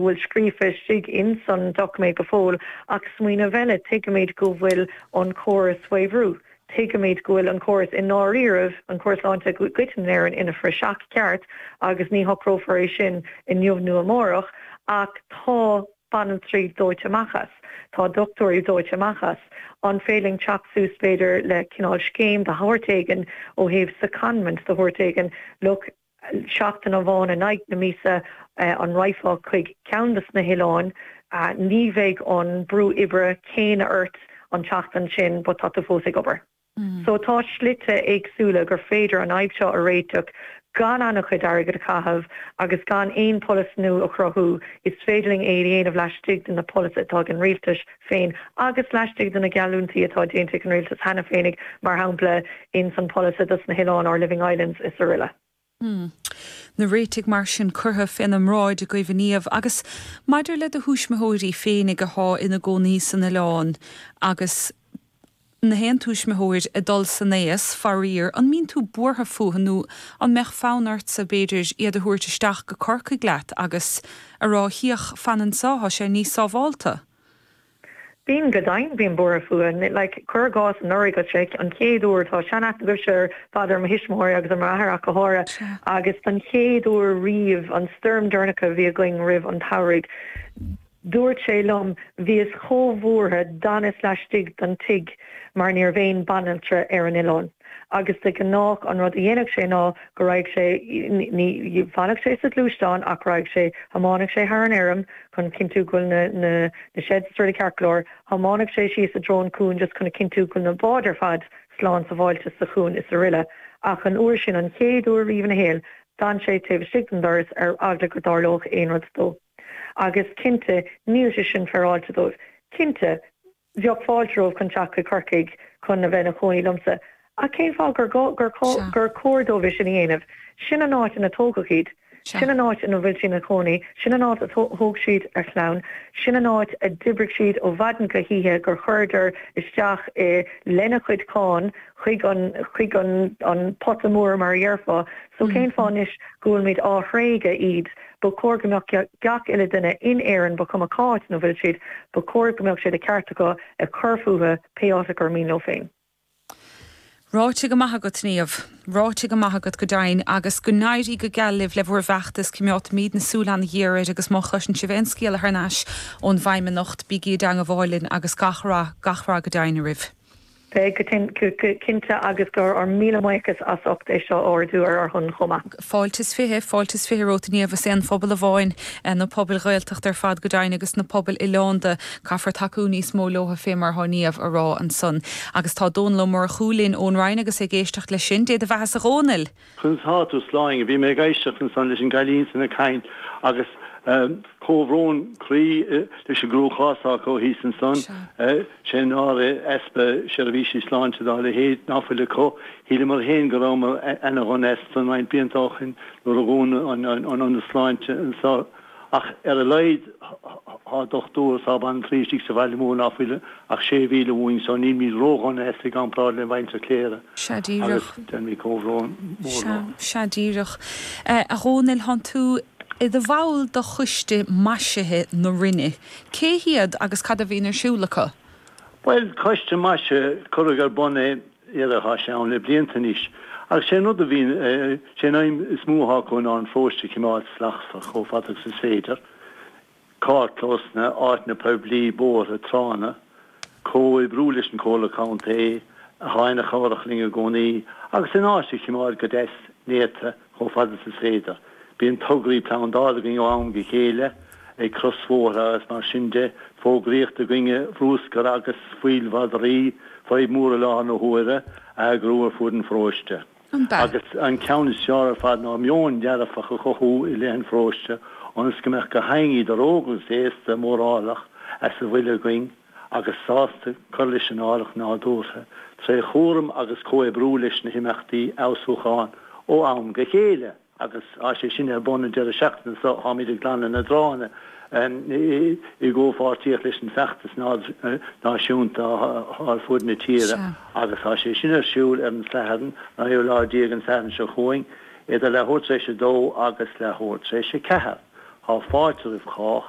bhfuil scríofa istigh ins an doiciméad go fóill ach smaoineamh eile, tuigimid go bhfuil an córas faoi bhrú, tuigimid go bhfuil an córas i ndáiríribh, an córas sláinte i gcoitinn in Éirinn, ina phraiseach ceart agus ní shocrófar é sin inniu nó amárach ach tá banaltraí dóite amach as, tá dochtúirí dóite amach as, an féidir linn teacht suas b'fhéidir le cineál scéim de shórt éigin ó thaobh secondment de shórt éigin, look. Seachtain amháin, in aghaidh na míosa, an raghfá chuig ceann de sna hoileáin? Ní bheidh an brú oibre céanna ort an tseachtain sin, but tá tú fós ag obair. So tá slite éagsúla gur féidir an fhadhb seo a réiteach gan an-chuid d'airgead a chaitheamh agus gan aon pholasaí nua a chruthú. Is féidir linn é a dhéanamh laistigh de na polasaithe atá ag an Rialtas. féin agus laistigh de na geallúintí atá déanta ag an rialtas cheana féinig, mar shampla, ins an Polasaí dos na hOileáin, Our Living Islands, is araile. Hm. Na réitigh mar sin curtha fé na mbráid agaibh a Niamh agus maidir le do thuismitheoirí féinig a thá ina gcónaí san oileán agus. Nó aon tuismitheoir ag dul san aos, faraor, an mbíonn tú buartha fúthu nó an mbeadh fonn ortsa, b'fhéidir, iad a thabhairt isteach go Corcaigh leat agus a rá, féach, fan anseo, tá sé níos sábhálta? Bím, go deimhin bím buartha fúthu. Like, cuir i gcás anuraidh, go séic, an chéad uair, tá seanaithne agaibhse ar fad ar mo thuismitheoirí agus ar m'athair ach go háirithe, agus don chéad uair riamh, an stoirm dheireanach a bhí againn roimh an tsamhradh, Dúirt sé liom, bhíos chomh buartha, d'fhanas laistigh den tigh mar ní raibh aon bhanaltra ar an oileán agus de ghnách an rud a dhéanfadh sé ná go raghadh sé, ní fanfadh sé sa ghluaisteán ach raghadh sé, thiomáineadh sé thar an fheirm chun cinntiú go bhfuil na sheds druidte ceart go leor, thiomáineadh sé síos i dtreo an chuain just chun a chinntiú go bhfuil na báid ar fad slán sábháilte sa chuan is araile ach an uair sin, an chéad uair riamh ina shaol, d'fhan sé taobh istigh den doras ar eagla go dtarlódh aon rud dó. Agus cinnte, níl sé sin féaráilte dóibh. Cinnte, bheadh fáilte roimhe chun teacht chuig Corcaigh chun a bheith ina chónaí liomsa, ach cén fáth gur chóir dóibh é sin a dhéanamh? Sin an áit ina tógadh iad. Sea. Sin an áit ina bhfuil siad ina chónaí. Sin an áit a thóg siad a chlann. Sin an áit a d'oibrigh siad ó mhaidin go hoíche, gur chuireadar isteach i, lena chuid cáin, chuig an, chuig an, an pota mór mar a dhéarfá. So cén fáth anois go bhfuilimid á thréigeadh, iad? Ba chóir go mbeadh gach uile duine in Éirinn, ba chuma cá háit ina bhfuil siad, ba chóir go mbeadh sé de cheart acu cur fúthu pé áit ar mian leo féin. Ráite go maith agat, Niamh. Ráite go maith agat go deimhin agus go n-éirí go geal libh le bhur bhfeachtas coimeádfaimidne súil an-ghéar air agus má chloiseann sibh aon scéala thar n-ais ón bhFeidhmeannacht, bígí i dteangmháil linn agus gach rath, gach rath go deimhin oraibh. Beidh, go cinnte, agus go raibh míle buíochas as ucht é seo a ardú ar ár shon chomh maith. Fáilte is fiche, fáilte is fiche romhat inniu. Is aon phobal amháin na pobail Ghaeltacht ar fad, go deimhin, agus na pobail oileánda, caithfear tacú níos mó leo fé mar atá Niamh a rá ansan. Agus tá Dónall Ó Murchú linn ón Rinn agus é ag éisteacht leis sin. Dé do bheathas a Dhónaill! Conas atá tú, Sláine? Bhí mé ag éisteacht ansan leis an gcailín san ag caint agus comhbhrón croí leis an gcruachás atá acu thíos ansan. Sé sin ar easpa seirbhísí sláinte dá leithéid ná fuil acu. Shíleamar féin go rabhamar ana dhona as san roinnt blianta ó shin nuair a dhún an t-ionad sláinte ansan. Ach ar a laghad tá dochtúirí sábháilte istigh sa Bhaile Mór ná fuil ach sé mhíle uainn, só nílimid ródhona as i gcomparáid le muintir Chléire agus déanaimid comhbhrón mór leo. Sea díreach. A Dhónaill, thá tú i do bhall de choiste maisithe na Rinne. Cé hiad agus cad a bhíonn ar siúl acu? Bhuel, coiste maisithe, cuireadh ar bun é ar, thá sé ann le blianta anois agus sé an rud a bhíonn, sé an aidhm is mó atá acu ná an paróiste a chimeád slachtmhar chomh fada agus is féidir, carrclósanna, áiteanna poiblí, bóithre, tránna. Comhoibriú leis an Comhairle Contae, athá ana chabhrach linn i gcónaí, agus an áit a chimeád go deas néata. chomh fada is is féidir. Bíonn tograí plandáil againn ó am go chéile, ag crosbhóithre agus mar sin de. Fógraí i dtaobh bruscar agus fuíoll madraí fadhb mhór i láthair na huaire a eagrú ar fud an pharóiste. An b'ea? Agus an ceann is fearr ar fad ná meon dearfach a chothú i leith an pharóiste ionas go mbeadh gach éinne idir óg agus aosta, mórálach as a bhfuil againn. agus sásta cur leis an áilleacht nádúrtha tré chúram agus comhoibriú leis na himeachtaí fheabhsúcháin ó am go chéile agus tá sé sin ar bun an deireadh seachtaine so, tháimid ag glanadh na dtránna i gcomhpháirtíocht leis an feachtas náisiúnta thá ar fud na tíre agus tá sé sin ar siúl ar an Satharn, an naoú lá déag, an Satharn seo chugainn, idir leathuair tar éis a dó agus leathuair tar éis a ceathair. Thá fáilte roimh chách.